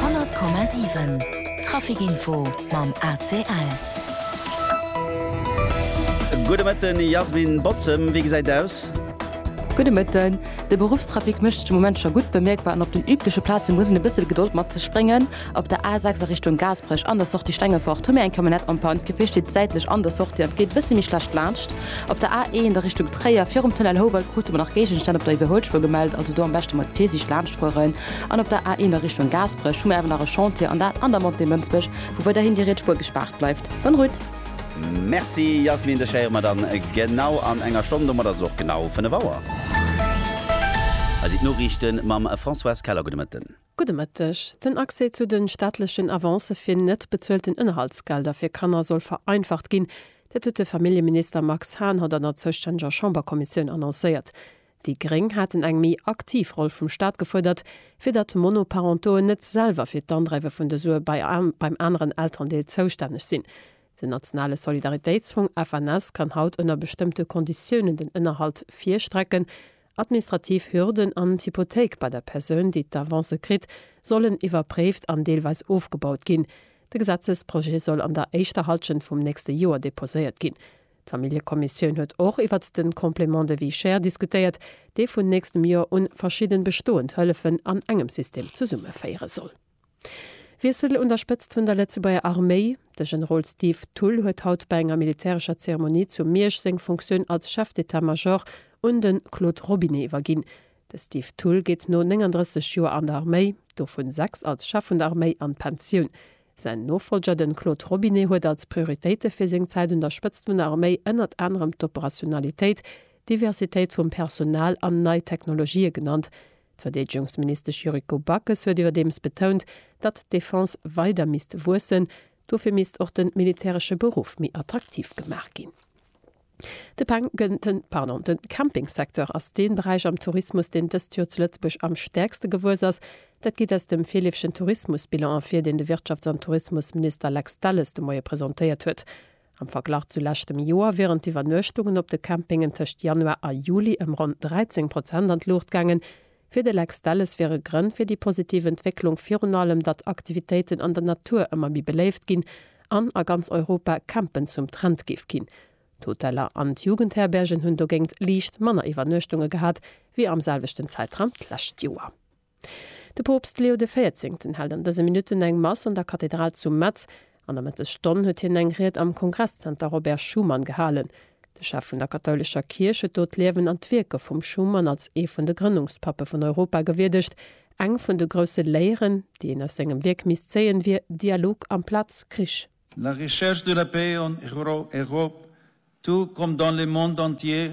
100,7 Traficinfo mam ACL. Gudde Mëtten, Jasmin Bozem, wéi gesäit et aus? Gudde Mëtten, De Beruffstrafic mécht sech de Moment scho gutt bemierkbar an op den übleche Plaze muss een e bësse Gedold mat sech bréngen. Op der A6 a Richtung Gaasperech an der Sortie Stengefort hu mir eng Camionnette en panne, d'Gefier steet säitlech an der Sortie an et geet e bësse méi schlecht laanscht. Op der A1 a Richtung Tréier virum Tunnel Houwald krute mer nach Géigenstänn op der Iwwerhuelspur gemellt, also do am beschte mat Virsiicht laanscht fueren. An op der A1 a Richtung Gaasperech hu mer awer nach e Chantier, an dat an der Montée Mënsbech, wou weiderhin déi riets Spur gespaart bleift. Bonne route! Merci Yasmin, dech héiere mer dann genau an enger Stonn, domat ass et och genau 5 Auer. Hei sinn d'Noriichten mam Françoise Keller. Gudde Mëtten. Gudde Mëtteg. Den Accès zu de staatlechen Avancë fir net bezuelten Ënnerhaltsgelder fir Kanner soll vereinfacht ginn. Dat huet de Familljeminister Max Hahn haut an der zoustännege Chamberkommissioun annoncéiert. Déi Gréng haten eng méi aktiv Roll vum Staat gefuerdert, fir datt Monoparentoen net selwer fir d'Andreiwe vun de Sue beim aneren Elterendeel zoustänneg sinn. Den nationale Solidaritéitsfong, FNS, kann haut ënner bestëmmte Konditiounen den Ënnerhalt virstrecken, Administrativ Hürden an d'Hypothéik bei der Persoun, déi d'Avance kritt, sollen iwwerpréift an deelweis ofgebaut ginn. De Gesetzesprojet soll an der éischter Hallschent vum nächste Joer deposéiert ginn. D'Familljekommissioun huet och iwwert de Complément de vie chère diskutéiert, dee vun nächstem Joer un verschidden bestoend Hëllefen an engem System zesummeféiere soll. Wiessel un der Spëtzt vun der Lëtzebuerger Arméi, De Generol Steve Thull huet haut bei enger militärescher Zeremonie zu Miersch seng Funktioun als Chef d'État-Major un de Claude Robinet iwwerginn. De Steve Thull geet no 39 Joer an der Arméi, dovun 6 als Chef vun der Arméi, an d'Pensioun. Säin Nofolger, de Claude Robinet, huet als Prioritéite fir seng Zäit un der Spëtzt vun der Arméi ënnert anerem d'Operationalitéit, d'Diversitéit vum Personal an nei Technologië genannt. D'Verdeedegungsministesch Yuriko Backes huet iwwerdeems betount, datt d'Defense weider misst wuessen. Dofir misst och de militäresche Beruff méi attraktiv gemaach ginn. De Campingsecteur ass dee Beräich am Tourismus, deen dëst Joer zu Lëtzebuerg am stäerkste gewuess ass. Dat geet aus dem virleefegen Tourismusbilan ervir, deen de Wirtschafts an Tourismusminister Lex Delles de Moie presentéiert huet. Am Verglach zu leschtem Joer wieren d'Iwwernuechtungen op de Campingen tëscht Januar a Juli ëm ronn 13 Prozent an d'Luucht gaangen. Fir de Lex Delles wiere Grënn fir déi positiv Entwécklung virun allem, datt Aktivitéiten an der Natur ëmmer méi beléift ginn an a ganz Europa Campen zum Trend géif ginn. D'Hoteller an d'Jugendherbergen hunn dogéint liicht manner Iwwernuechtunge gehat wéi am selwechten Zäitraum d'lescht Joer. De Poopst Leo de Véierzéngten hält an dëse Minutten eng Mass an der Kathedral zu Metz. An der Mëttesstonn huet hien eng Ried am Kongresszenter Robert Schuman gehalen. De Chef vun der kathoulescher Kierch huet do d'Liewen an d'Wierke vum Schuman als ee vun de Grënnungspappe vun Europa gewierdegt. Eng vun de grousse Léieren, déi een aus sengem Wierk misst zéien, wier Dialog amplaz Krich. La recherche de la paix en Europe tout comme dans le monde entier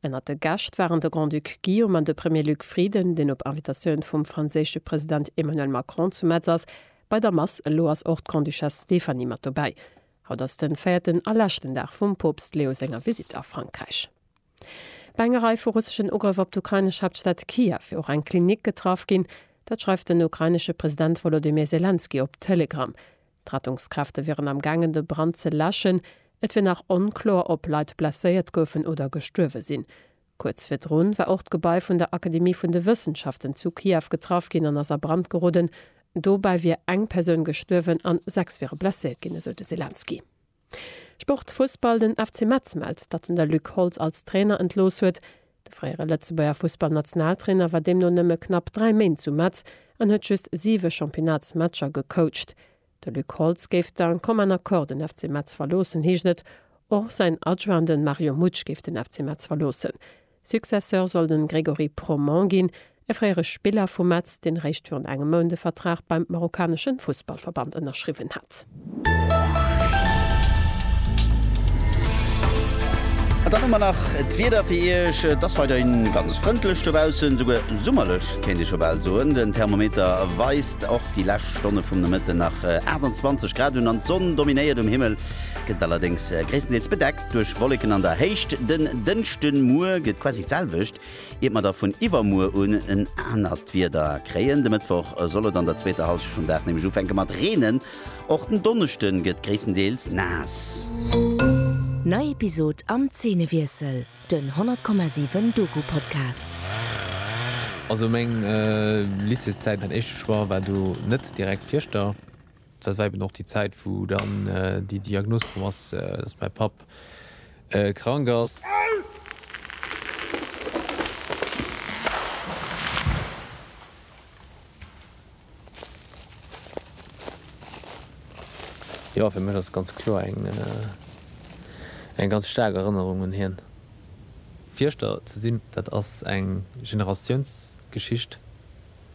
Ënnert de Gäscht waren de Grand-Duc Guillaume an de Premier Luc Frieden, deen op Invitatioun vum franséische President Emmanuel Macron zu Metz ass. Bei der Mass elo ass och d'Grande-Duchesse Stéphanie mat dobäi. Haut ass den véierten a leschten Dag vum Poopst Leo senger Visitt a Frankräich. Bei enger Rei vu russeschen Ugrëff op d'ukrainesch Haaptstad Kiew wier och eng Klinik getraff ginn. Dat schreift den ukrainesche President Wolodymyr Selenskyj op Telegram. D'Rettungskräfte wieren am gaangen de Brand ze läschen. Et wier nach onkloer ob Leit blesséiert goufen oder gestuerwe sinn. Kuerz virdru war och d'Gebai vun der Akademie vun de Wëssenschaften zu Kiew getraff ginn an ass a Brand geroden. Dobäi wier eng Persoun gestuerwen an sechs wiere blesséiert ginn, esou de Selenskyj. Sport, Fussball, Den FC Metz mellt, datt en de Luc Holtz als Trainer entlooss huet. De fréiere Lëtzebuerger Fussballnationaltrainer war deemno nëmme knapp 3 Méint zu Metz an huet just 7 Championnatsmatcher gecoacht. De Luc Holtz géif d'un commun accord den FC Metz verloossen, heescht et. Och säin Adjoint, de Mario Mutsch, géif den FC Metz verloossen. Successeur soll den Grégory Proman ginn, e fréiere Spiller vu Metz, deen réischt virun engem Mount e Vertrag beim marokkaneschen Fussballverband ënnerschriwwen hat. An dann hu mer nach d'Wieder fir Iech. Et ass weiderhin ganz frëndlech dobaussen, souguer summerlech kéint ee scho bal soen. Den Thermometer weist och déi lescht Stonne vum Nomëtten nach 28 Grad un an d'Sonn dominéiert um Himmel, gëtt allerdéngs gréisstendeels bedeckt. Duerch Wolleken an der Héicht den Dënschde Muer gëtt quasi d'selwecht, iert mer da vun iwwermuer un en anert Wieder kréien. De Mëttwoch soll et an der zweeter Hallschent vum Dag nämlech ufänke mat reenen. Och den Donneschde gëtt gréisstendeels naass. Nei Episod am Zeenewiessel, den 100,7 Doku-Podcast. Also meng Lycéeszäit, mäin éischte Choix war do net direkt Fieschter. Dat war eben och déi Zäit, wou dann déi Diagnos komm ass, dass mäi Papp krank ass. Jo, fir mech ass ganz kloer eng ganz staark Erënnerung un hien. Fierschter ze sinn, dat ass eng Generatiounsgeschicht.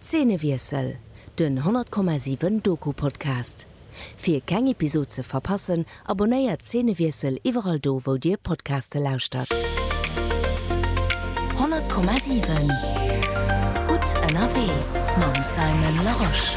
Zeenewiessel, den 100,7 Doku-Podcast. Fir keng Episod ze verpassen, abonnéiert Zeenewiessel iwwerall do wou dir Podcaste lauschtert. 100,7 Gutt ënnerwee mam Simon Larosche.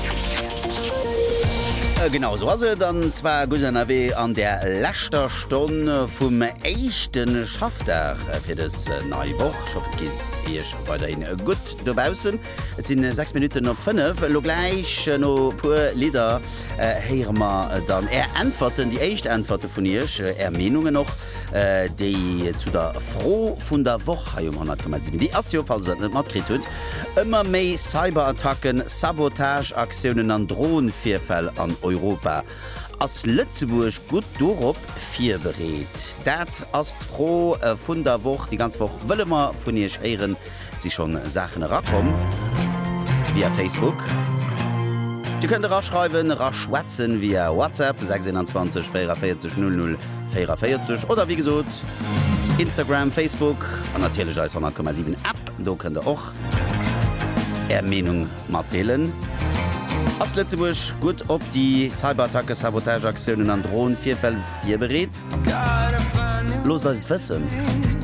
Genau esou ass et, an zwar gutt ënnerwee an der leschter Stonn vum éischte Schaffdag fir dës nei Woch. Ech hoffen, et geet iech weiderhin gutt. Dobaussen, et si 6 Minutten op 5. Elo gläich, no e puer Lidder, héiere mer dann Är Äntwerten, déi éischt Äntwerte vun Iech, Är Meenungen och, déi zu der Fro vun der Woch hei um 100 Gramm sinn. Déi ass jo, falls Der et net matkritt hutt, Ëmmer méi Cyberattacken, Sabotageaktiounen an Dronevirfäll an Europa. Ass Lëtzebuerg gutt dorop virbereet? Dat ass d'Fro vun der Woch. Déi ganz Woch wëlle mer vun Iech héieren. si schonn Saachen erakomm via Facebook. Dir kënnt eraschreiwen, eraschwätzen via WhatsApp 621 44 00 44 oder wéi gesot Instagram, Facebook an natierlech eis 100,7 App. Do kënnt der och Är Meenung matdeelen. Ass Lëtzebuerg gutt op déi Cyberattacken, Sabotageaktiounen an Dron-Virfäll virbereet? Loosst eis et wëssen.